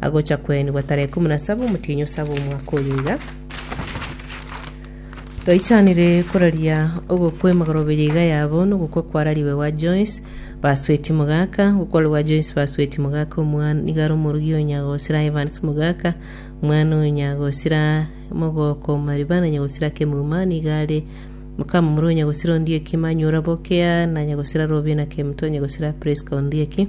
agocha koenigwa tarehe ikomi na saba omotienyi o saba omwaka oyo iga. Toichanire koraria ogokwa emagoroba eye iga yabo nogokwa kwarariwe gwa Joyce Basweti Mogaka gokwarwa gwa Joyce Basweti Mogaka omwana igara omorugi o Nyagosira Evans Mogaka omwana o Nyagosira Mogoko Mariba na Nyagosira Kemuma niga are mokamomura o Nyagosira Ondieki Manyura Bokea na Nyagosira Robina Kemto Nyagosira Prisca Ondieki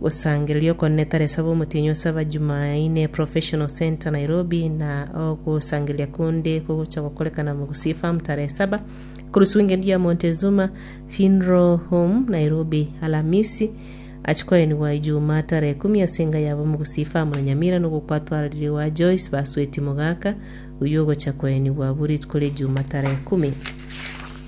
Gosangereria okonene tari esaba omotienyi osaba Jumaine Professional Centre Nairobi na ogosangereria konde kogocha gokorekana Mogusii Farm tare esaba Kurusu Ngendi ya Montezuma Funeral Home Nairobi Alamisi Achi koenigwa Ijumaa tare ekumu ase enga yabo Mogusii Farm na Nyamira nogo kwatwaririwa Joyce Basweti Mogaka oyio ogocha koenigwa abwo rituko ria Ijumaa tare ekumu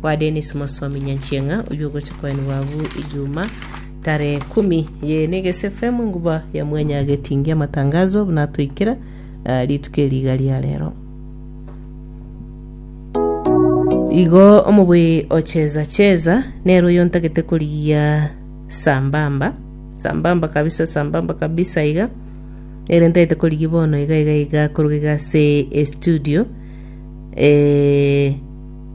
Kwa Dennis Mosomi Nyanchieng'a, oyio ogocha koenwa abwo ejuma tarehe kumi ye negese FM enguba ya mwenya agetingia amatangazo buna atoikera ah, rituko eri iga ria rero. Igo omobui ocheza cheza nero oyo ntagete korigia sambamba sambamba kabisa sambamba kabisa iga ere ntagete korigia bono iga iga iga koruga iga ase estudio eh,